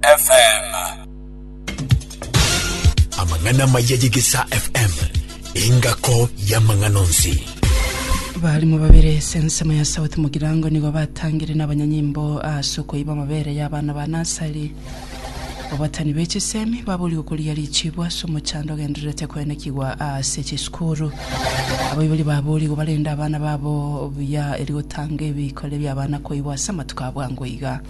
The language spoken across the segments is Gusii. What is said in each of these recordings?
FM. Amang'ana maya y'Egesaa FM engako y'amang'ana onsi. Balimu babere ase ensemo ya South Mugirango nigo batangire n'abanyanyimbo ase okoiba amabere y'abana ba nasari. Abatani be chisemi babori gokoria richibu ase omochando ogendererete koenekigwa ase chisukuru. Abaibori babori gobarenda abana babo buya eri gotanga ebikore bi'abana koibwa ase amatuko abwango iga.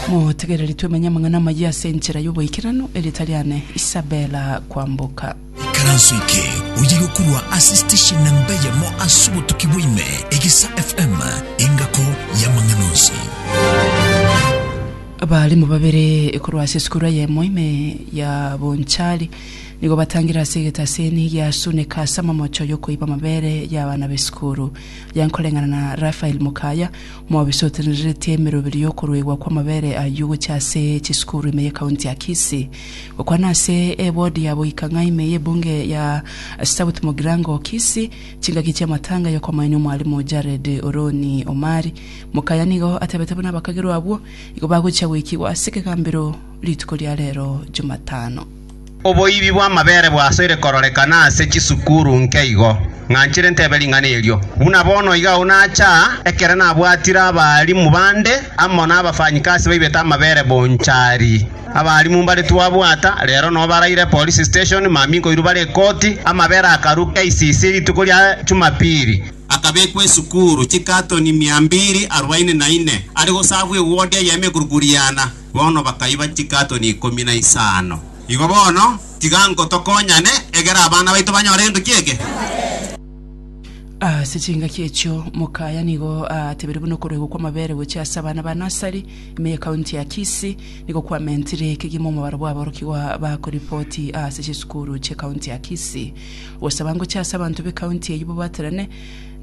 Motegereri twemenye amang'ana amayia ase enchera y'oboikeranu, erieta riane Isabella Kwamboka. Ikaranso eke oye gokorwa ase station namba eyemo ase obotuki bwa ime, Egesa FM, engako y'amang'ana onsi. Abaalimu babere korwa ase esukuru eyemo ime ya Bonchari nigo batangire ase egetaseni gia Suneka ase amamocho y'okoiba amabere y'abana b'esukuru. Yankoreng'ana na Raphael Mukaya Mwabisotenereretie emeroberi y'okoruegwa kw'amabere ayio gochia ase chisukuru ime y'Ekaunti ya Kisii, gokwana ase ebodi ya boika ng'a ime y'ebunge ya South Mugirango, Kisii, chingaki chi'amatanga y'okomoenia omwalimu Jared Oroni Omari. Mokaya nigo atebete buna abakagerwa abwo igo bagochia goikigwa ase ekegambero rituko ria rero Jumatano. Oboibi bw'amabere bwasoire kororekana ase chisukuru nke igo, ng'a nchire ntebe ring'ana erio. Buna bono iga agwo nacha, ekero nabwatire abarimu bande amo n'abafanyikasi baibete amabere bonchari. Abarimu mbare twabwata, rero no baraire Police Station, mami nkoirwa bare ekoti, amabere akarwa KCC rituko ria Jumapili, akabekwa esukuru chikatoni mia mbiri arubaini na ine, are gosabwa ewodi eye y'emekurukuriana. Bono bakaiba chikatoni ikomi na isano. Igo bono, tiga inko tokonyane, egera abana baito banyore gento ki'ekero. Ase chingaki echio Mukaya nigo aatebire buna okoruegwa kw'amabere gochia ase abana ba nursery ime y'ekaunti ya Kisii nigo kwamentire ekegima omobaro bw'aborokigwa ba koripoti ase chisukuru chi'ekaunti ya Kisii. Gosaba ngochia ase abanto b'ekaunti eyio babaterane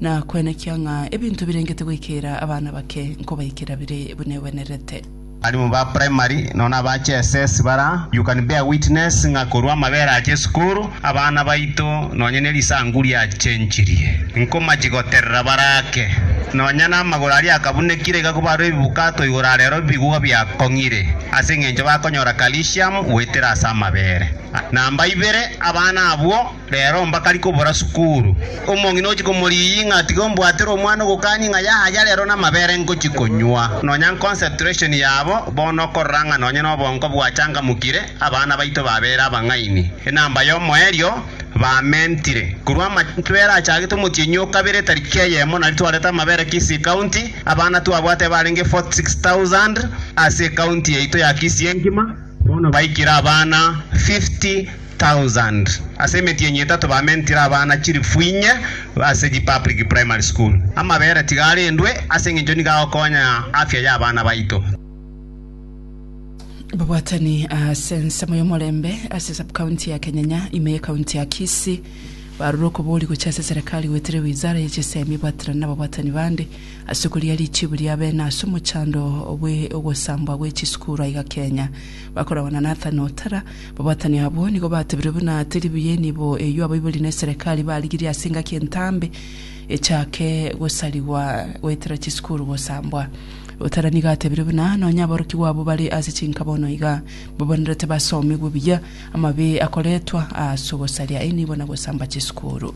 na kwenekia ng'a ebinto birengete goikera abana bake nkobaikera bire buna egwenerete. Abalimu ba primary nonya naba GSS bara, you can bear witness ng'a korwa amabera ache esukuru, abana baito nonya nerisangu riachenchirie. Nkomachi goterera bare ake. Nonya namagoro aria akabunekire iga kobarwe ebibukato igoro arero bigwa biakong'ire, ase engencho bakonyora calcium goetera ase amabere. Namba ibere, abana abwo. Rero mbakari kobora sukuru. Omong'ina ogochia komorigia ng'a tiga ombwatere omwana ogokani ng'a yaya rero namabere ngochia konywa. Nonya concentration yabo bono okorora ng'a nonya nobongo bwachangamukire, abana baito babere abang'aini. Enamba yomoerio bamentire. Korwa amachwere achagete omotienyi okabere tariki eyemo nari twarete amabere Kisii County, abana twabwate barenge 46,000 ase ecounty yaito ya Kisii engima, bono baikire abana 50,000. thousand ase emetienyi etato bamentire abana chilifu inye ase chi public primary school. Amabere tiga arendwe ase engencho nigo agokonya afya ya abana baito. Babwatani ase ensemo y'omorembe ase subcounty ya Kenyanya ime ye county ya Kisii barure okobori gochia ase serikali goetera ewizara ye chisemi ebwaterane na babwatani bande ase okorigia richibu ria bene ase omochando bwe ogosambwa gwe chisukuru aiga Kenya. Bakoragwa na Nathan Otara. Babatani abwo nigo batebire buna teribu y'enibo eyio abaiborire neserekari barigirie ase engaki entambe echake gosarigwa goetera chisukuru gosambwa. Lutera nigo atebire buna nonya aborokigwa abwo bare ase chinka bono iga babonerete basomigwe buya amabe akoretwa ase ogosaria enibo na gosamba chisukuru.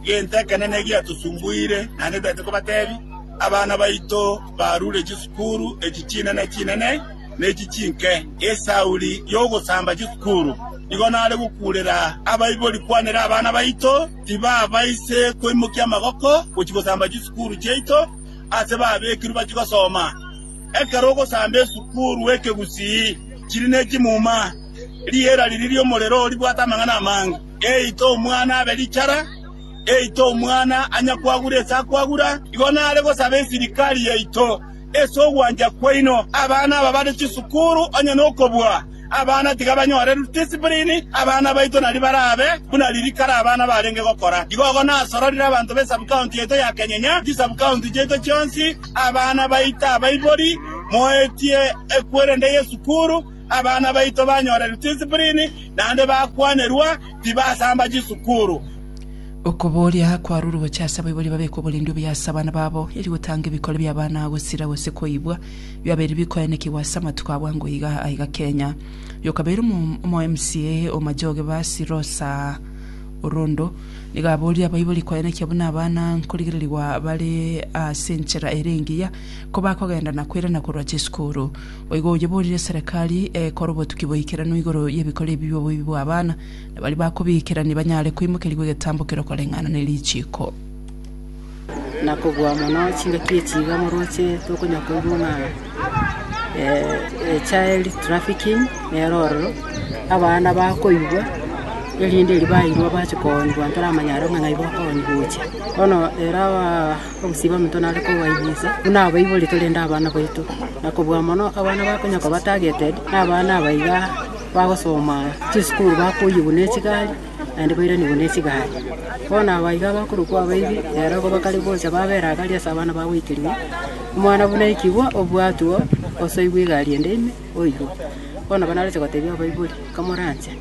Gento ekenene egiatusumbuire naende toete kobatebi, abana baito barure chisukuru echi chinene chinene, ne chichinke, esauri y'ogosamba chikukuru. Nigo nare gokuurera abaibori kwanera abana baito tibabaise koimokia amaboko gochia gosamba chisukuru chiaito ase babekirwe bachie gosoma. Ekero ogosamba esukuru ekegusii, chiri ne chimuma, riera riria ri'omorero ribwate amang'ana amange. Eite omwana abe richara, eite omwana anyakwagure ase akwagura. Igo nare gosaba esirikari yaito. Ase ogwancha kwaino abana aba bare chisukuru onye nokobua, abana tiga banyore discipline, abana baito nari barabe buna riiri kare abana barenge gokora. Igogo nasororire abanto be subcounty yaito ya Kenyenya, chisubcounty chiaito chionsi, abana baito abaibori, moetie ekwerende y'esukuru, Abana baito banyore ridisiprini naende bakwanerwa tibasamba chisukuru. Okoboria kwarure gochia ase abaibori babeke oborindi obuya ase abana babo, erio gotanga ebikori bi'abana gosira gose koibwa biabeire bikoenekigwa ase amatuko a bwango iga aiga Kenya. Oyo kabeire omo mca o Majoge Basi Rosa Orondo nigo aboririe abaibori koenekia buna abana nkorigererigwa bare ase enchera ere engiya kobakogenda na koirana korwa chisukuru. Boigo oyeborire Serekari ekore obotuki boikeranu igoro y'ebikori ebi bi'oboibi bw'abana, na baria bakobiikerania banyare koimokerigwa egetambo kero koreng'ana ne richiiko. Na kobua mono chingaki echi iga morooche tokonywa koigwa ng'a child trafficking nero ororo abana bakoigwa erinde erio bairwa bache koonywa koba toramanya aro ng'a ng'ai bakoonywa gocha bono ero aba. Ogosiba omonto nare kobaibisa buna abaibori torende abana baito, na kobua mono abana bakonyoka ba targeted nabana aba iga bagosoma chisukuru bakoyigwa ne chigari naende bairanigwe ne chigari. Bono aba iga bakorokwa abaibi ero igo bakare gocha babera agari ase abana bagoikerigwa omwana buna ekigwa obwatwo osoigwe egari ende ime oirwe. Bono nabo naroche gotebia abaibori kamoranche.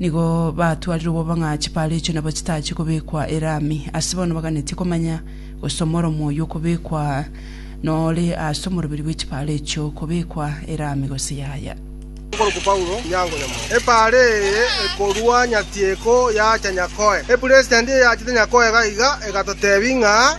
Nigo batwarire obobang'a chipaaro echio nabo chitachie kobekwa erami. Ase bono baganeti komanya, gose omoromo oyio okobekwa nore ase omoroberi bwe chipaaro echio, kobekwa erami gose yaya. Omokorokigwa Paulo Onyango Nyamura. Epaaro eye ekorua nyatieko yacha Nyakoe. Epuresiti endi eyachete Nyakoe iga iga egatotebi ng'a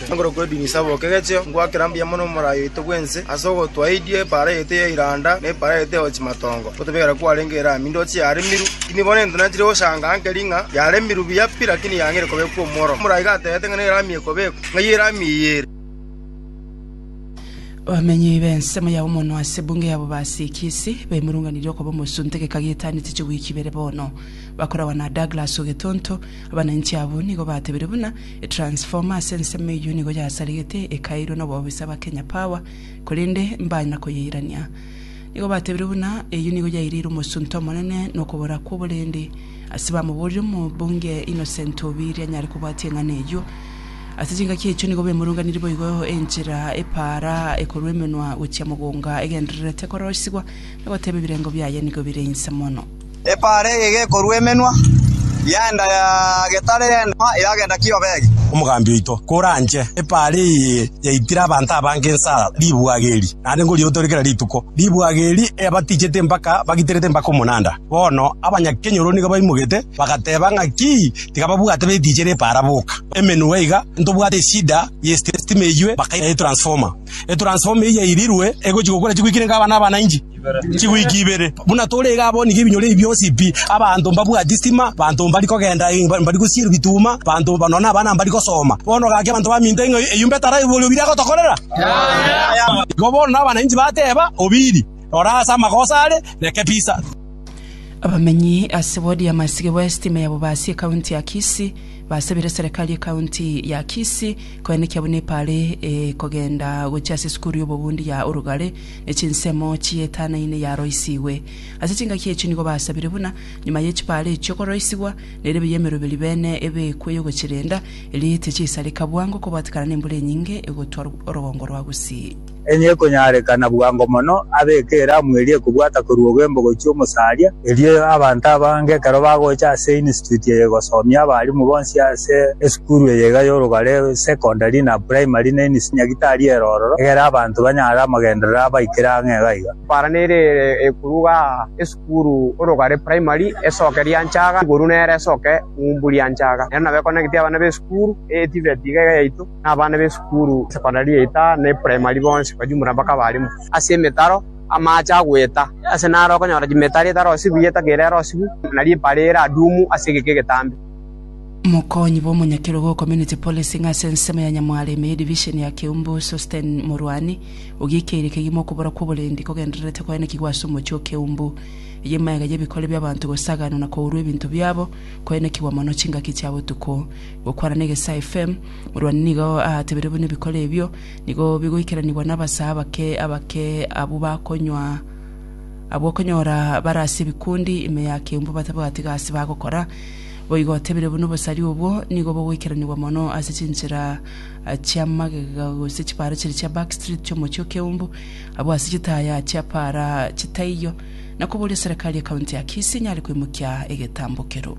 Igoro kw'edini isaboke egecheo, ngwakera mbuya mono omorai oito bw'ense, ase ogotwaidie epaara yaito ya iranda, na epaara yaito ya chimatongo, otobegera kwarenge ere aa mindoche yaremirwe. Tindi bono ento nanchire goshangaa nkeri ng'a yaremirwe buya pi, lakini yang'eire kobekwa omworomo. Omorai gatebete ng'a nero amie kobekwa, ng'ai ere amie eye ere? Abamenyi b'ensemo ya Omonwa ase ebunge ya Bobasi Kisii baimurunganirie okoba omosunte geka gietaanete chiwiki ibere bono. Bakoragwa na Douglas Ogetonto, Abananchi abwo nigo batebirie buna Transformer ase ensemo eyio nigo yasaregete ekairwe nobobisa ba Kenya Power korende mbanya koyeirania. Nigo batebire buna eyio nigo yaireire omosunte omonene nokobora kwoborendi ase bamoborire omobunge Innocent Obiiri anyare kobwatia eng'ana eyio. Ase chingaki echio nigo bemurunganirie boigo enchera epaara ekorwa emenwa gochia mogonga egendererete koroisigwa nagoteba ebirengo biaye nigo bire inse mono. Epaara eye gekorua emenwa y'enda ya getare y'enda eragenda Kiobegi. Omogambi oito koranche epaara eye yaitire abanto abange insa ribwaga eri, naende ngoriotore kera rituko. Ribwaga eri eyabatichete mpaka bagiterete mpaka omonanda. Bono abanyakenyoro nigo baimogete, bagateba ng'aki tiga babwate betichera epaara boka. Emenwa iga ntobwate eshida y'estima eywe, bakaira etransformer. Etransformer eyio yairirwe egochi gokora chigwiki nere nka abana abana inji. Chiwiki ibere buna tore iga abwo nigo ebinyoro ebi bionsi pi, abanto mbabwati sitima, abanto mbari kogenda, mbari gosiera ebituma, abanto nonya na abana mbari gosoma. Bono gaki abanto baminto ng'a eyio mbe tara oborio obiri agotokorera? Igo bono nabananchi bateba, Obiri, rora ase amagoso are, reke pisa. Abamenyi ase ward ya Masige West, ime ya Bobasi, ekaunti ya Kisii, basabire serikari ekaunti ya Kisii koenekia buna epaare ekogenda gochia ase esukuru ya obobundi ya Orugare, ne chinsemo chietanaine yaroisigwe. Ase chingaki echio nigo basabire buna nyuma ye chipaara echio koroisigwa, na erebe y'emeroberi bene ebekwe y'ogochirenda, erio etie chiaisareka bwango kobwatekana nembura enyinge egotwa orogongo rwa gusii. Enye ekonyarekana bwango mono abe ekeramu eria ekobwata korwa ogembo gochia omosaria, Erio abanto abange ekero bagocha ase Institute eye gosomia abarimu bonsi ase esukuru eye iga y'orogare, secondary, na primary, ne Inisi Nyagitari ere ororo, egere abanto banyare amagenderero abaikire ang'e iga iga. Para nere ere ekoruga esukuru orogare primary esoke rianchaga igoro nere esoke ng'umbu rianchaga. Ere nabo ekonegete abana b'esukuru eye TVET iga iga yaito, na abana b'esukuru secondary yaito aa, ne primary bonsi kwa jumla mpaka abarimu ase emetaro. Amaache agoeta, ase naro okonyora chimetari etarosibu eye etagere erosibu, na ripara ere adumu ase egeka egetambe. Mokonyi bw'omonyakerogo o Community Policing ase ensemo ya Nyamwareme ye Division ya Keumbu, Sosten Morwani, ogiekeirie kegima okobora kw'oborendi kogendererete koenekigwa ase omochie o Keumbu, eyi emegega y'ebikore bi'abanto gosaganwa na kourwa ebinto biabo koenekigwa mono chingaki chia botuko. Gokwana na Egesaa FM, Morwani nigo aatebire buna ebikore ebio Nigo bigoikeranigwa nabasee abake abake abwo bakonywa, abwo okonyora bare ase ebikundi ime ya keumbu batabwati gasi bagokora. Boigo otebire buna obosari obwo nigo bogoikeranigwa mono ase chinchera chi'amagega gose chipaara chiria chia back street chi'omochie o Keumbu, abwo ase chitaya chiapaara chitaiyo, na koboria serekari ya county ya Kisii nyare koimokia egetambo keroo.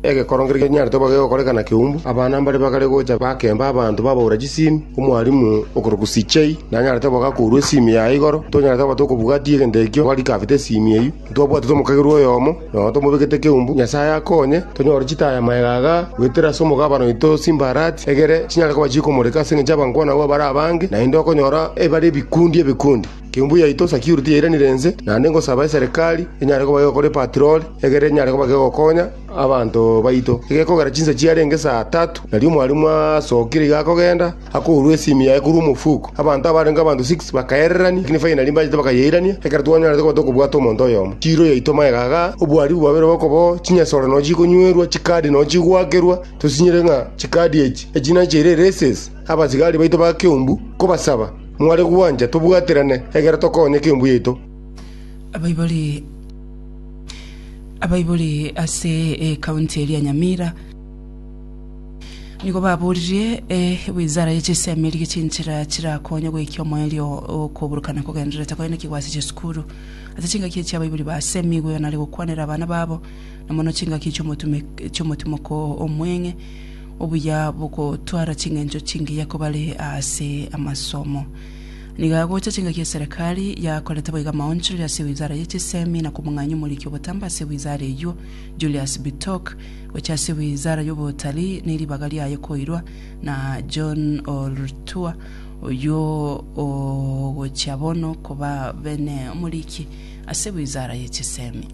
Egekorogo ngeria ginyarete koba gegokorekana keumbu. Abana mbare bagare gocha bakemba abanto babaura chisimi. Omwalimu okorokwa CJ nanyarete boka kourwa esimi yaye igoro. Ntonyarete koba tokobugatia egento ekio boka rikafete esimi eyio. Ntwabwatete omokagerwa oyomo, nonya tomobekete keumbu. Nyasaye akonye tonyore chitaya maega aga goetera ase omogabane oito Simbarat, egere chinyare koba chikomoreka ase engencho y'abankwana abwo bare abange, naende okonyora ebare ebikundi ebikundi. Kembu yaito security yairanire ense, naende ngosaba eserekari enyare kobake egokora epatirori, egere enyare kobake egokonya abanto baito. Egekogera chinsa chiarenge saa tatu, nario omwalimu asokire iga akogenda, akourwa esimi yaye korwa omofuko. Abanto abarenge abanto six bakaererania, lakini finally mbachete bakayeirania, ekero twanyarete koba tokobwata omonto oyomo. Chiiro yaito magega igaa, obwaribu bwabeire bobe okoboo, chinyesore nonya chikonywerwa, chikadi nonya chigoakerwa, tosinyire ng'a chikadi echi, echi nachiire eraces. abasigari baito ba Keumbu kobasaba, Mware gwancha tobwaterane, egera tokonye Keumbu yaito. Abaibori Abaibori ase ecounty eria Nyamira nigo baboririe ewizara ye chisemi erigie chinchera chirakonye goikia omoerio okoburukana kogendererete koenekigwa ase chisukuru ase chingaki echi abaibori basemi igweo nare gokwanera abana babo na mono chingaki chi'omotimoko omweng'e obuya bogotwara ching'encho chingiya kobare ase amasomo. Nigo agocha chingaki eserekari yakorete boiga amaonchorero ase wizara ye chisemi na komong'anyia omoriki obotambe ase wizara eyio Julius Bitok gocha ase wizara yobotalii ne ribaga riaye koirwa na John Olrtua oyio ogochia bono koba bene omoriki ase wizara ye chisemi.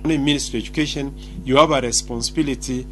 Bono in ministry of education you have a responsibility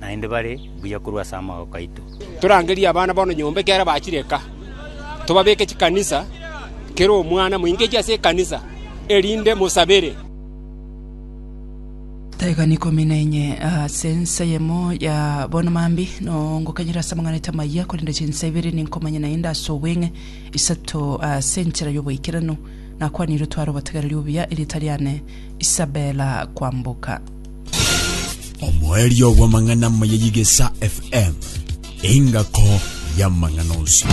naende bare buya korwa ase amagoka aito. Torangerie abana bono nyomba ekiagera bachire eka, tobabeke chikanisa, kera omwana moingechi ase ekanisa, erinde mosabere. Taegani ikomi na enye ase ensa eyemo ya bono mambia nongokanyera ase amang'ana aito amayia, korende chinsa ibere ninkomanya naende ase obweng'e, isato ase enchera y'oboikeranu. Nakwanire otware obotegereri obuya, erieta riane Isabella Kwamboka. omoerio bw'amang'ana amaya y'Igesa FM, engako y'amang'ana onsi.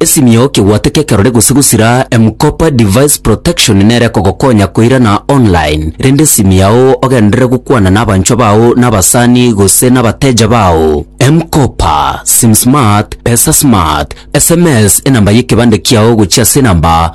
Esimio kigwate kekerore gose gusira M-Kopa Device Protection nere kogokonya koirana online rende esimi yao ogenderere gokwana na abanchwa bao na abasani gose na abateja bao. M-Kopa, SimSmart, PesaSmart, SMS enamba y'ekebande kiao gochia ase enamba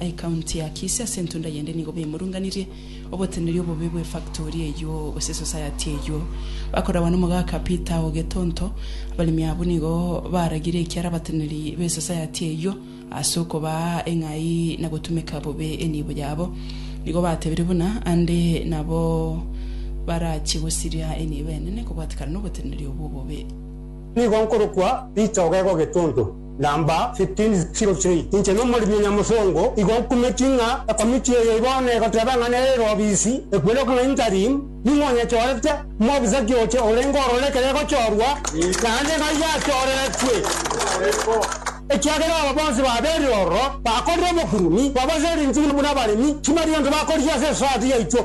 Ecounty ya Kisii ase entunda yende nigo baimorunganirie oboteneri obobe bw'efactory eyio gose esociety eyio. Bakoragwa n'omogaka Peter o Getonto, abaremi abwo nigo baragire ekiara abateneri b'esociety eyio ase okobaa eng'ai na gotumeka bobe enibo yabo. Nigo batebire buna ande nabo barachie gosiria enibo enene kobwatekana n'oboteneri obwo obobe. Nigo nkorokwa Peter Ogega o Getonto. Number 15:03 Inche nomoremi o Nyamosongo igo nkumeti ng'a ekomiti eye igo negoteeba ng'a nere erobisi ekwirokwa ng'a interim, ning'o onyechorete? Omobisa ki oche orenge orore ekero egochorwa? Naende ng'ai yachoreretwe? Ekiagera aba bonsi babeire ororo bakorire obokurumi, babaseri inchini buna abaremi, timari gento bakoria ase esosayati yaito.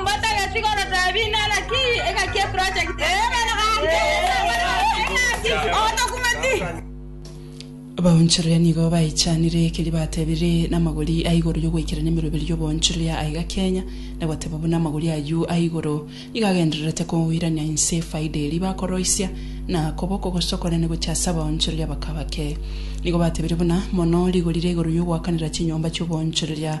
Mbatageti gotabi inara ki egaki eprojekti eye. Abaonchoreria nigo baichanire ekeria batebire namagori a igoro y'ogoikerania emeroberi y'oboonchoreria aiga Kenya, na goteba buna amagori ayio a igoro nigo agendererete koirania inse efaida eria bakoroisia, na koba okogosa okonene gochia ase abaonchoreria abake abake. Nigo batebire buna, mono rigori ria igoro y'ogoakanera chinyomba chi'oboonchoreria.